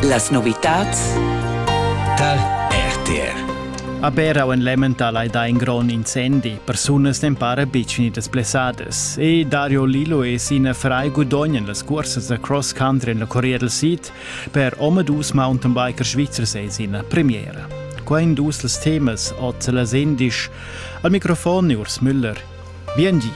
Las novitads tar RTR. A Berau en Lemmental hai dà in grond incendi. Persunas n'en para betg gnittas blessadas. E Dario Lillo e Sina Fry gudognan las cursas da cross country en la Corea del Sid per omadus mountainbiker svizzers e sina premiera. Qua in dus las temas, ot las endisch. Al microfon Urs Müller. Biengi!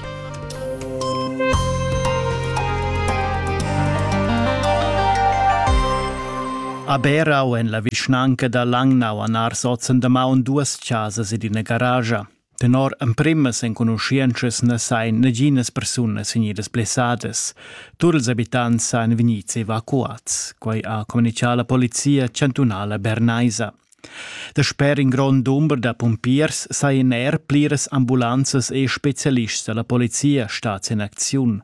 A Berau en la vischnanca da Langnau han ars ozen damaun duas chasas ed ina garagia. Tenor emprimas enconuschientschas na sain naginas persunas vegnidas blessadas. Tur ils abitants sain vegnids evacuats. Quai ha communicà la polizia chantunala bernaisa. Dasper in grond dumber da pumpiers sajan er pliras ambulanzas e spezialists da la polizia stads en acziun.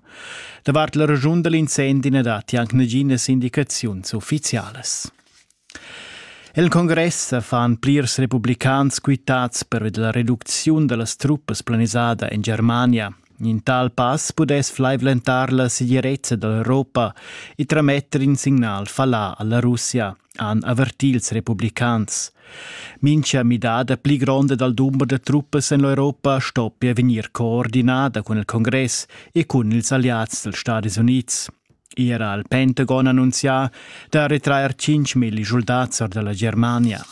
Davart la raschun da l'incendi na datti anc naginas indicaziuns uffizialas. El congress fan plirs republicans quitads per la reducziun da las truppas planisada en Germania. In tal pass pudess flaivlentar la segirezza da l'Europa e trametter in signal fallà a la Russia. han avertì ils republicans. Mincha midada pli gronda dal dumber da truppas en l'Europa stoppia vegnir coordinada cun il Congress e cun ils alliads dals Stati Unids. Era il Pentagon annunzià da retrair 5.000 soldats or da la Germania.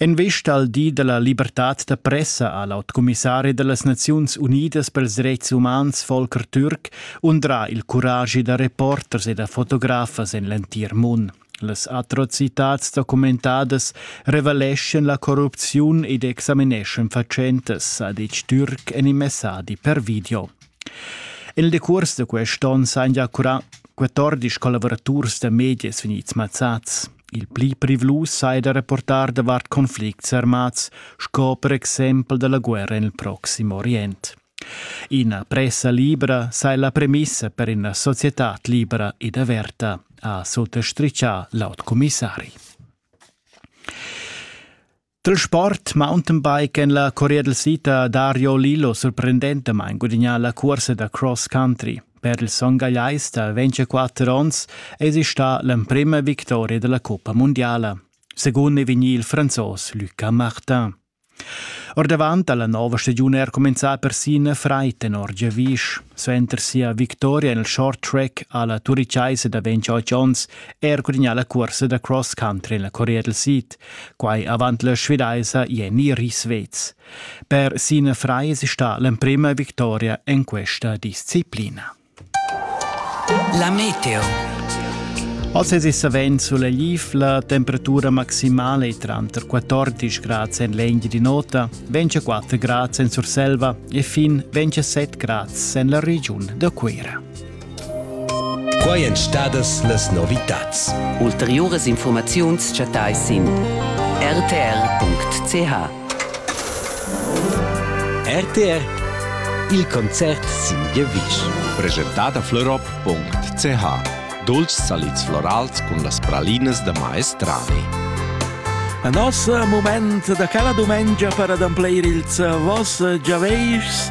En vesta al di dalla libertad da pressa ha l'autcumissari dallas Naziuns Unidas per ils dretgs umans Volker Türk undrà il curagi da reporters e da fotografas en l'entir mund. Las atrocitats documentadas revaleschan la corrupziun ed examineschan fatschentas, ha detg Türk en in messadi per video. En il decurs da quest onn s'han ja curà 14 collavuraturs da medias vegnids mazzads. Il pli privlus sai da reportar davart conflicts armats, sco per exempel dalla guerra nel Proximo Orient. Ina pressa libra sai la premissa per ina società libera ed averta, ha sottostriccià l'aut commissari. Dal sport mountainbike en la Corea del Sud ha Dario Lillo surprendentamain gudagnà la cursa da cross country. Per il son gagliais da 24 onns è stà l'emprima victoria della Coppa Mondiala. Secondo è vegnì il franzos Lucas Martin. Ordavant alla nuova stagione è cominciata persino Freiten Orgevisch. Suenter sia vittoria nel short track alla Turicaise da 28 onns è gudagnà la corsa da cross country nella Corea del Sud. Quai avant la svedaisa Jenny Risvez. Per Sine Freis sta l'emprima victoria en questa disciplina. La meteo. Als es savent sulla Lif la temperatura maximale tranter 14 grads en l'engio di nota, 24 grads en Surselva e fin 27 grads en la regiun da Cuira. Quai èn stadas las novitads. Ulteriuras infurmaziuns chattais sin rtr.ch. RTR Il concert sin giavisch. Presentat a florop.ch Dolci salids florals cun las pralinas da maestrani. A nos mument da cala dumengia per ademplir ils vos giavischs